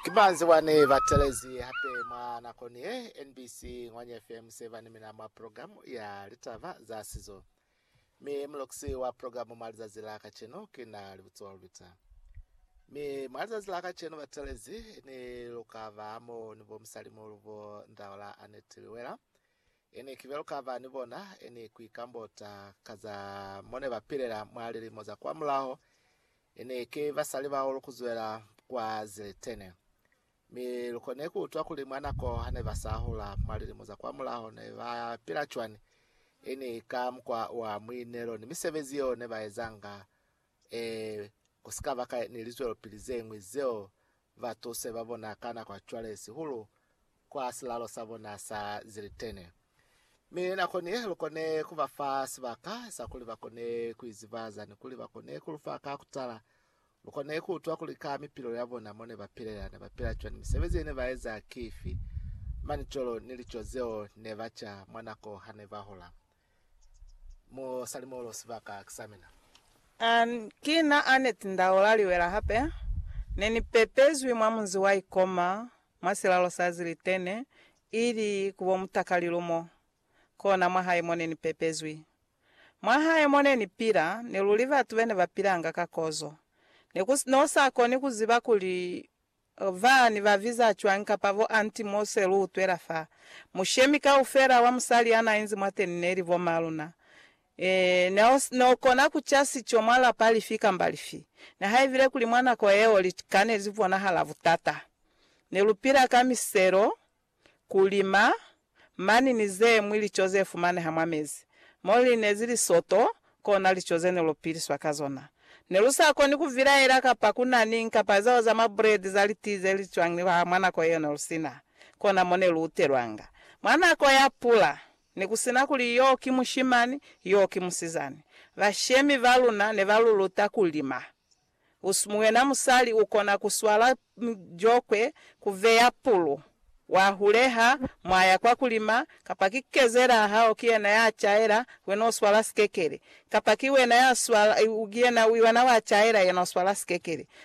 Ki manzi wa ne ba telezi hape mwa nako ni ye. NBC Ngwanya FM se ba ni mina mwa program ya litaba za sizo, mi mulokisi wa program mwa lizazi la kacenu ki na Libutsiwa Lubita. Mi mwa lizazi la kacenu batelezi ni lu ka ba mo ni bo musalimuhulu bo Ndaola Annette Liwela. Ini kibe lu ka ba ni bona, ini ku ikambota ka za mo ne ba pilela mwa lilimo za kwa mulaho, Ene ki basali bao lukuzwela kwa Ziletene, mi lukone kuutwa kuli mwa nako hane basahula mwa lilimo za kwamulaho ne ba pila cwani, ini ka mukwa wa muinelo ni misebezi yeo ne baezanga, ee, kusikaba ka ni lizwelopili zeñwi zeo ba tuse ba bona ka nako ya cwale, sihulu kwa silalo sa bona sa zilitene. Mi nako ni ye, lu kone ku ba fa sibaka sa kuli ba kone ku izibaza ni kuli ba kone ku lu fa ka kutala. Lu kone ku utwa kuli ka mipilo ya bona mo ne ba pilela, ne ba pila cwani, misebezi ye ne ba eza ki ifi, mani cwalo ni lico zeo ne ba ca mwa nako ha ne ba hola. Mo sali molo sibaka ki sa mina. An, ki na Annette Ndaola Liwela hape. Ne ni pepezwi mwa munzi wa Ikoma, mwa silalo sa Zilitene, ili ku bo mutakalilu mo. Kona mwahae mo ne ni pepezwi. Mwahae mo ne ni pila, ne luli batu bene ba pilanga ka kozo. Ne ku no sa koni ku ziba kuli Ba ni ba biza cwañi kapa bo anti mo se lu utwela fa? Mushemi kaufela wa musali ya na inzi mwateni ne li bo ma luna. Ee, ne o, ne o kona ku ca sico mwa lapa lifi kamba lifi. Nihaibile kuli mwa nako yeo lika ne li bonahala butata, ne lu pila ka miselo kulima, mani ni zemwi lico zefumaneha mwa mezi. Mo linezi lisoto, kona lico zene lupiliswa ka zona. Nelusakoni kuvilaela kapa kuna niñ kapa zao za mabredi za litii zelicwangilwaha mwa nako yeo nelusina kona mo neluutelwanga. Mwa nako ya pula, nekusina kuli yo ki mushimani, yo ki musizani, bashemi baluna nebaluluta kulima. Muyena musali ukona kuswala jokwe, kuveya pulu, wahuleha, mwaya kwa kulima, kapa ki kezela hao kiyena ya caela, wena uswala sikekele. Kapa ki wena ya swala, kiyena wacaela yena uswala sikekele.